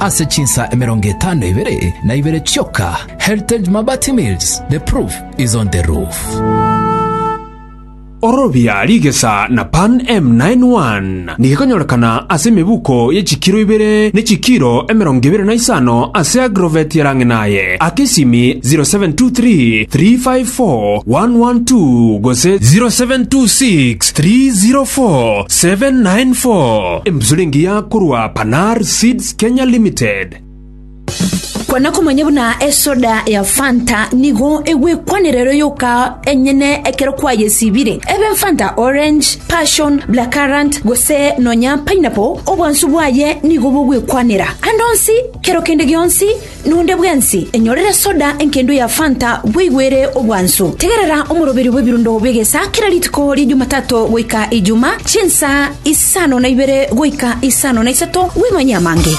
ase chinsa emerongo etano ibere na ibere chioka, Heritage Mabati Mills, the proof is on the roof. Orobia rigesa na Pan M91 nigekonyorekana ase emebuko ye chikiro ibere ne chikiro emerongo ebere na isano ase Agrovet ya Rang'inaye, aka esimi 0723 354 112 gose 0726 304 794. Embusuro engiya korwa Panar Seeds Kenya Limited. Kwana komanya buna esoda ya fanta nigo egwekwanera ero yoka enyene ekero kwayesibire ebe fanta orange passion black currant gose nonya pineapple obwansu bwaye nigo bogwekwanera ande onsi kero kende gionsi Nonde bwensi enyorere soda enkendo ya Fanta bweigwere obwansu. Tegerera omoroberi bw'ebirundo bi'egesa kera rituko ria Jumatato goika Ijuma, chinsa isano na ibere goika isano na isato, bw'imanye amange.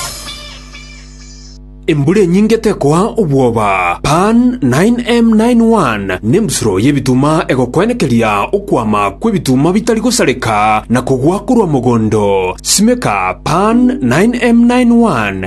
Embura enyinge tekoa obwoba. Pan 9M91 nembusuro y'ebituma egokwenekeria okwama kw'ebituma bitari gosareka na kogwa korwa mogondo. Simeka Pan 9M91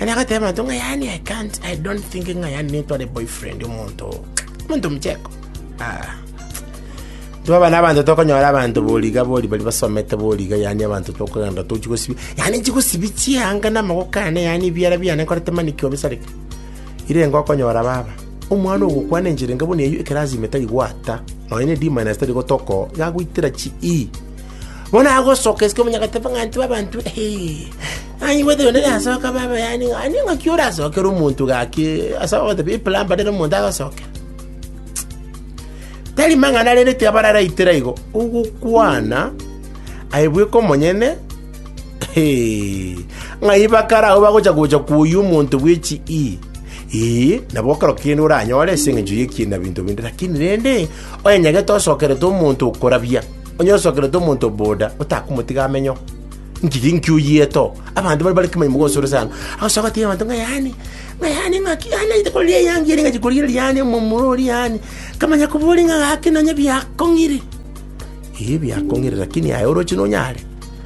Yaani agateba mato ng'a yaani I can't, I don't think ng'a yaani nitware boyfriend omonto oo. Omonto mcheko. Ah. Twaba n'abanto tokonyora abanto boriga bori bari basomete boriga yaani abanto tokogenda tochi gosibi. Yaani chigosibi chianga n'amagoko ane yaani ebiara biane nkorete mani ki obisareke. Ire engo okonyora baba. Omwana ogokwana enchera enga buna eyio ekerazima etari gwata. Nonya ne D minus tari gotoko. Yagoitera chi E. Bono agosoka esike omonyagateba ng'a ntwe abanto. Hey. Aye gwete onde nasoke abe abayani ng'a ning'aki orasokere omonto gaki ase ogotebi eplamber ere omonto agosokera. Tari mang'ana arereti abararaitera igo, ogokwana aye bweka omonyene hee, ng'ai bakare agwo bagocha gocha koyia omonto bwe chi ii. Ee, nabo ekero kende oranyore ase eng'encho y'ekiina na binto binde, lakini rende onyenyagete osokerete omonto okorabia, onye osokerete omonto boda, otakomotiga amenyeo. Nchiki inki oyiete oo? Abanto baria bare kemanyi mogoso ore sana. Agosoka agatebia abanto ng'a yaani, ng'a yaani ng'aki yaani naite korigia eyangi ere ng'achi korigereria yaani omomura oria yaani. Nkamanya koboria ng'a gaki nonye biakong'ire. Ee biakong'ire lakini aye oroche nonyare.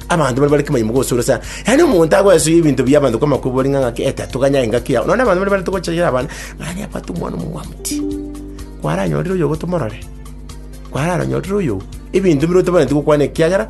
Abanto baria bare kemanyi mogoso ore sana. Yaani omonto agoesuia ebinto bia abanto kwama koboria ng'a ng'aki ete atoganya engaki yao. Nonye abanto baria barente gochayera abana, ng'a aria abwate omwana omomwamti. Kwaranyorire oyogo tomorore. Kwararonyorire oyogo. Ebinto bire otabareti gokwana ekiagera.